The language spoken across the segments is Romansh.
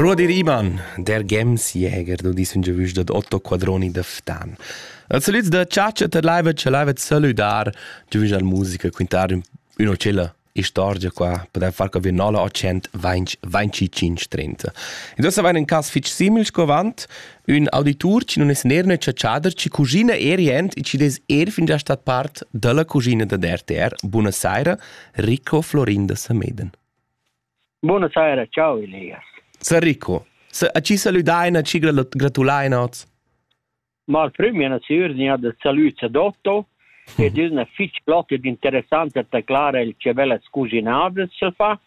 Ruodir Iman, der Gemsjäger, du dis un giavüsch dad Otto Quadroni da Ftan. Als solids da Ciacia t'laiva ce laiva saludar giavüsch al musica quintar üna cella istorgia qua poder far che nola 825-35. E dossa vain in cas fich simil sco avant, ün auditur ci non es nerno e ciaciader ci cucina erient e ci des er fin già stat part dalla cucina da DRTR. Buona saira, Ricco Florin da Sameden. Buna saira, ciao Elias. Sarico, a chi saludain, a chi gratulain oz? Ma il prüm ina siurzina da salüds ad Otto ed es üna fich flott ed interessanta da Clara il che bellas cuginadas ch'el fa.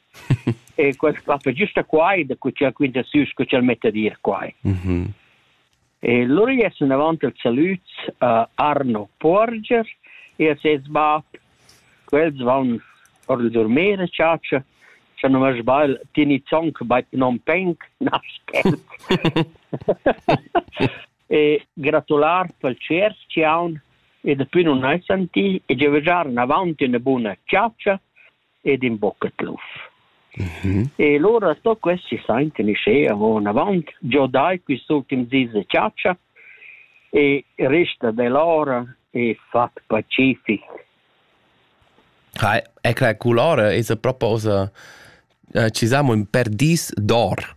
e quel fa giüsta quai da cu c'è quinta süs cu c'el metta dir quai. Mm -hmm. E lura ges anavant als salüds a Arno Puorger e a ses bap. Quels vaun or da durmir a chatscha. Sa nu m'ha sbagl, Tini Zonk bait non penc, na spert. e gratular pel tscherchiaun e daplü nun ais santì e giövagiar avanti üna buna chatscha ed in bucet luf. Mm-hmm. E lura sto quest si sainten isce avon avant, giò dai quist ultim dis de ciaccia e resta dell'ora e fat pacific. E crea culore es a proposa, uh, ci siamo in per dis d'or.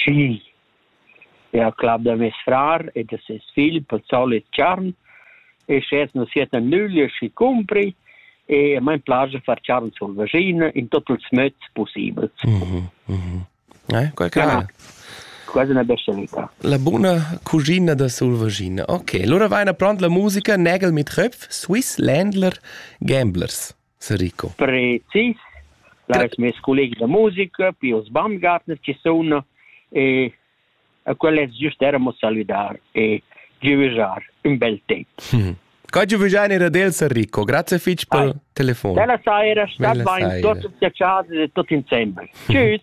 Schi, eau clav da meis frar e da seis figl pel solit charn e sch'els nu sietan nüglia schi cumpri e a mai plaja far charn sulvaschina in tot ils möds pussibels. Mhm, mhm. Eh, qualchena? Ah, quasi una bestialità. La buna cugina da sulvaschina. Okay, lura vaina pront la musica Nägel mit Röpf, Swiss Landler Gamblers. Serico. Precis. Là es meis collega da musica, Pius Baumgartner, chi suna e a quel es giust eramo salüdar e giüvegiar ün bel temp. Qua giuvegiain era del Serico. Grazie fich per Ai. telefon. Bella saira, stat Bella bain saira. tutti a casa e tutti insembel. Tschüss.